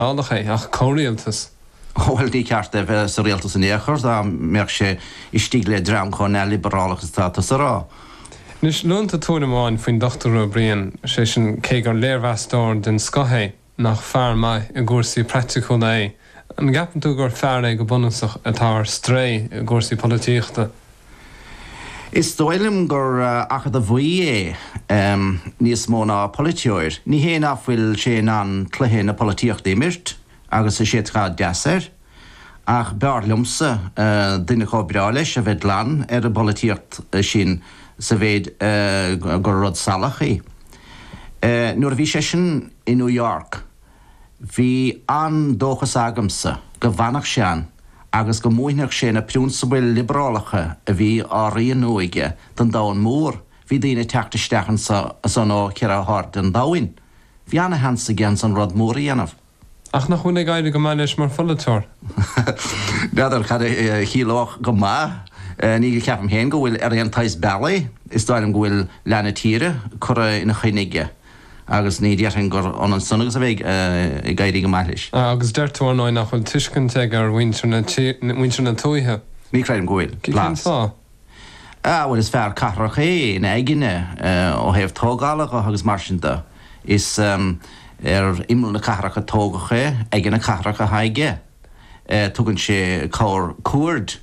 liobarálach é, ach comhrialtas? Bhuel, ní ceart dó a bheith sa rialtas in aon chor, dá mbeadh sé istigh le dream chomh neamhliobrálach is atá tusa a rá. Anois, luann tú tuairim amháin faoin Dochtúir Ó Briain, sé sin, cé gur léirmheastóir den scoth é, nach fear maith i gcúrsaí praiticiúla é. An gceapann tú gur fear é go bunúsach atá ar strae i gcúrsaí polaitíochta? Is dóigh liom gur acadamhaí é níos mó ná polaiteoir. Ní hé nach bhfuil sé in ann cluiche na polaitíochta a imirt agus é sách deas air, ach b'fhearr liomsa duine chomh breá leis a bheith glan ar an bpolaitíocht sin sa mhéid gur rud salach í. Nuair a bhí seisean i New York, Bhí an-dóchas agamsa go bhfanfadh sé ann agus go múinfeadh sé na prionsabail liobarálacha a bhí á rianú aige don domhan mór. Bhí daoine ag teacht isteach ansan is ansúd ó cheithre hairde an domhain. Bhí an-sheans aige ansan rud mór a dhéanamh. Ach nach bhfuil ag éirí go maith leis mar pholaiteoir? N'fheadar cad a chiallódh 'go maith'. Ní, ní cheapaim féin go bhfuil ar aon tsaghas bealaigh. Is dóigh liom go bhfuil leath na tíre curtha ina choinne aige. agus ní déarfainn gur ionann san agus a bheith ag éirí go maith leis. Agus deir tú, ar ndóigh, nach bhfuil tuiscint aige ar mhuintir na tuaithe. Ní chreidim go bhfuil. Cén fáth? Ah, bhuel, is fear cathrach é ina aigne, ó thaobh tógála dho agus mar sin do. Is ar imeall na cathrach a tógadh é, aigne na cathrach athá aige. Tugann sé corrchuaird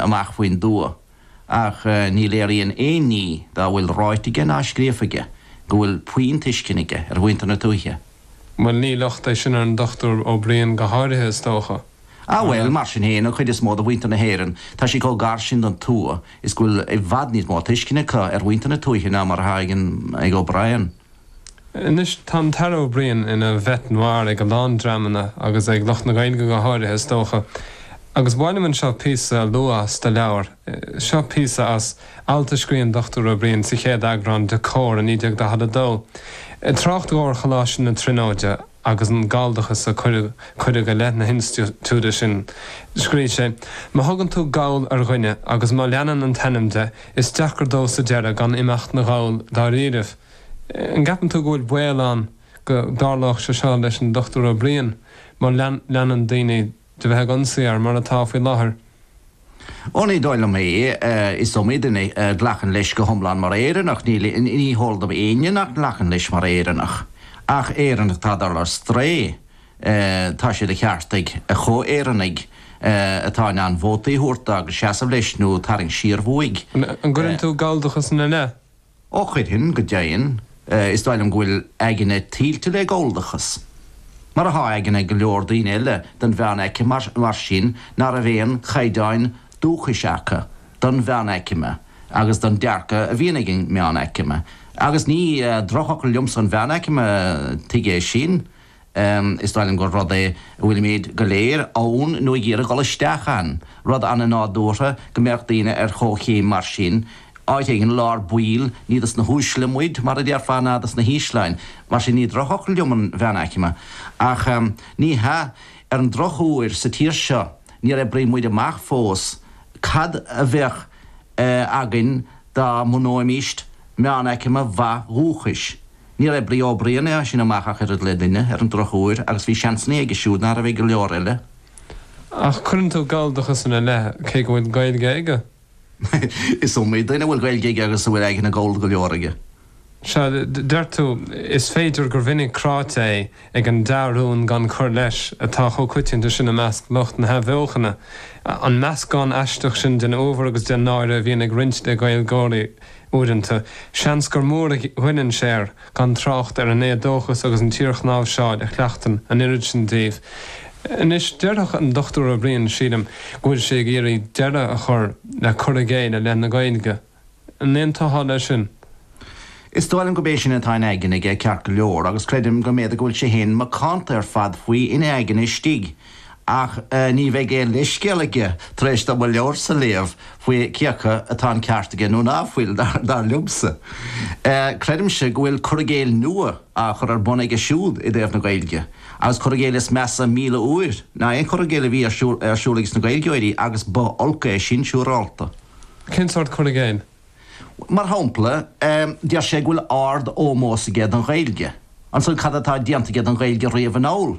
amach faoin dtuath. ach ní léiríonn aon ní dá bhfuil ráite aige ná scríofa aige go bhfuil puinn tuiscine aige ar mhuintir na tuaithe. Bhuel, ní locht é sin ar an Dr. Ó Briain go háirithe, is dócha. Ah bhuel, mar sin féin, an chuid is mó de mhuintir na hÉireann, tá siad chomh gar sin don tuath is go bhfuil i bhfad níos mó tuiscine acu ar mhuintir na tuaithe ná mar atá ag O'Brien. Anois tá an tAire Ó Brien ina bhête noir ag a lán dreamanna agus ag lucht na Gaeilge go háirithe is dócha. Agus ba mhaith liom anseo píosa a lua as do leabhar. Seo píosa as alt a scrígh an Dr. Ó Brien sa chéad eagrán de Comhar i 1942. Ag trácht dó ar Choláiste na Tríonóide. agus an galldachas a cuireadh i leith na hinstitiúide sin, scríobh sé, 'Má thugann tú Gall ar dhuine agus má leanann an t-ainm de, is deacair dó sa deireadh gan imeacht 'na Ghall dáiríribh. An gceapann tú go bhfuil baol ann go dtarlódh sé seo leis an Dr. Ó Briain má leanann daoine de bheith ag ionsaí air, mar atá faoi láthair. Ó, ní dóigh liom é. Is iomaí duine a ghlacann leis go hiomlán mar Éireannach. Ní, ní heol dom éinne nach nglacann leis mar Éireannach. Ach Éireannach atá ag dul ar strae, tá sé de cheart ag a chomh-Éireannaigh atá in ann vótaí a thabhairt dó agus seasamh leis nó tarraingt siar uaidh. An gcuireann tú galldachas ina leith? Ó chuirfinn go deimhin, is dóigh liom go bhfuil aigne tuilte le Galldachas. Mar atá aigne ag go leor daoine eile den mheánaicme mar sin ná raibh aon chaighdeáin dúchais acu don mheánaicme agus don dearcadh a bhíonn ag an meánaicme. Agus ní drochfhocal liomsa an mheánaicme, tuig é sin? Is dóigh liom gur rud é a bhfuilimíd go léir ann nó ag iarraidh dul isteach ann. Rud ana nádúrtha go mbeadh daoine ar chomh-chéim mar sin. Áit éigin i lár baill, ní dos na huaisle muid, mar a déarfá, ná dos na hísle. Á. Mar sin ní drochfhocal liom an mheánaicme. Ach ní, ar an droch uair, sa tír seo, níor oibrigh muid amach fós cad a bheadh againn dá mbunóimíst meánaicme mhaith dhúchais. Níor bhris Ó Briain as sin amach ach oiread le duine, ar an droch uair, agus bhí seansanna aige siúd ná raibh ag go leor eile. Ach cuireann tú Galldachas ina leith, cé go bhfuil Gaeilge aige? Is iomaí duine a bhfuil Gaeilge aige agus a bhfuil aigne Gallda go leor aige. Sea, deir tú, is féidir gur mhinic cráite é ag an dea-rún gan cur leis atá chomh coitianta sin i measc lucht na hathbheochana, an meascán aisteach sin den uabhar agus den náire a bhíonn ag roinnt de Ghaeilgeoirí. Uaireanta, seans gur mór a ghoilleann sé air, gan trácht ar an éadóchas agus an tsíorchnáimhseáil a chleachtann an oiread sin díobh. Anois, déarfadh an Dr. Ó Briain, sílim, go bhfuil sé ag iarraidh deireadh a chur le cur i gcéill i leith na Gaeilge. An aontófá leis sin? Is dóigh liom gurb é sin atá in aigne aige ceart go leor, agus creidim go mb'fhéidir go bhfuil sé féin macánta ar fad faoi ina aigne istigh. Ach ní bheidh aon leithscéal aige tar éis dó mo leabharsa léamh faoi cioca atá an ceart aige nó ná fuil, dar liomsa. Creidimse go bhfuil cur i gcéill nua á chur ar bun aige siúd i dtaobh na Gaeilge, agus cur i gcéill is measa míle uair ná aon chur i gcéill a bhí ar siúl ages na Gaeilgeoirí agus ba olc é sin siúrálta. Cén sórt cur i gcéill? Mar shampla, deir sé go bhfuil ard ómós aige don Ghaeilge. Ansan cad atá déanta aige don Ghaeilge riamh anall?